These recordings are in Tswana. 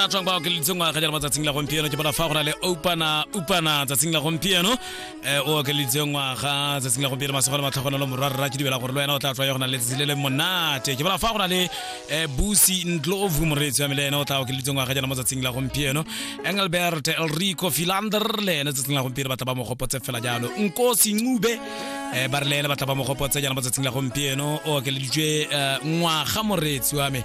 a tswang ba okeleditse ngwaga jalo matsatsing la gompieno ke bona fa go na le opana upana tsatsing la gompieno um o okeleditse ngwaga tsatsing la gompieno masego le matlhogonelo morwarra ke dibela gore le wena o tla tswa yo go na le tsatsi le le monate ke bona fa go na le um busi ntlovu moreetsi wa me le ene o tla okeleditse ngwaga jalo mo tsatsing la gompieno engelbert elrico filander le ene tsatsing la gompieno batla ba mo gopotse fela jalo nkosi ncube um ba re le ene batla ba mo gopotse jalo mo tsatsing la gompieno o okeleditswe um ngwaga moreetsi wa me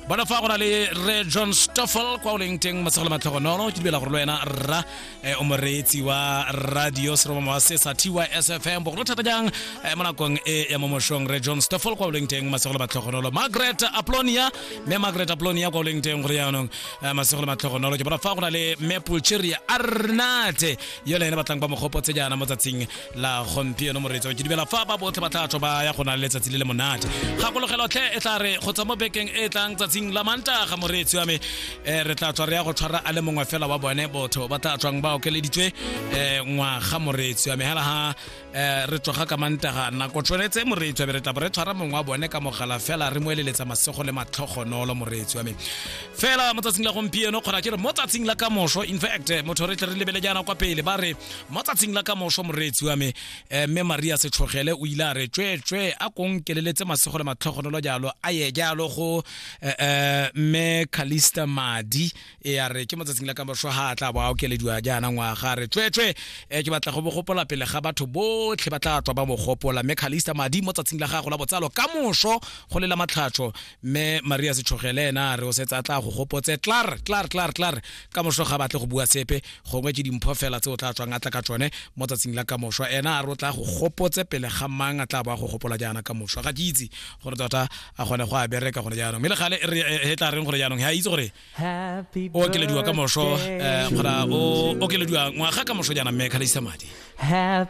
bona fa go na le re john stoffel kwa o leng teng matsegole matlhogonolo ke dibela gore le wena rra eh, o moreetsi wa radio seromamo wa sesa tys fm bogolo thata jang eh, mo nakong e ya mo mošong re john stoffel kwa o leng teng matsegole matlhogonolo margaret aplonia mme margaret aplonia kwa o leng teng gore jaanong eh, matsegole matlhogonolo ke bona fa go na le mapulcheria arnate yone ene batlang ba mogopotse jaana mo tsatsing la gompieno moretso ke dumela fa ba botlhe ba tla tswa ba ya go na le letsatsi le le monate gakologelo tlhe e tla re go tswa mo bekeng e tlang tsatsing la mantaga moreetsi wa me um re tla tswa re ya go tshwara a le mongwe fela wa bone botho ba tla tswang ba okeleditswe um ngwaga moreetsi wa me hela ha um re tsoga ka mantaga nako tshwanetse moreetsi wa me re tla bo re tshwara mongwe wa bone ka mogala fela re mo eleletsa masego le matlhogonolo moreetsi wa me fela mo tsatsing la gompieno kgona ke re mo tsatsing la kamoso in fact motho re tle re lebele jaana kwa pele ba re mo tsatsing la ka moso moreetsi wa me eh, mme maria setlhogele o ile a re tsweetswe a konkeleletse masego le matlhogonolo jalo a ye jalo go eh, eh, mme calista madi e a re ke mo tsatsing la ka moso ga a tla bo a okelediwa jaana ngwaga a re tsweetswe eh, ke batla go bogopola pele ga batho botlhe ba tla tswa ba mogopola mme calista madi mo tsatsing la gago la botsalo ka moso go lela matlhatsho mme maria setshogele ena a re o setse a tla go gopotse tlar tlar tlar tlar ka moso ga batle go bua sepe gongwe ke dimpho fela tse o tla tswang a tla ka tsone mo tsatsing la ka moso ena a re o tla go gopotse pele ga mang a tla bo a go gopola jaana ka moso ga ke itse gore tota a kgone go a bereka gone jaanong mme le gale e re- e- e tla reng gore jaanong ga a itse gore Happy o okelediwa ka moso birthday. um kgona o okelediwa ngwaga ka moso jaana mme kgalesisa madi Happy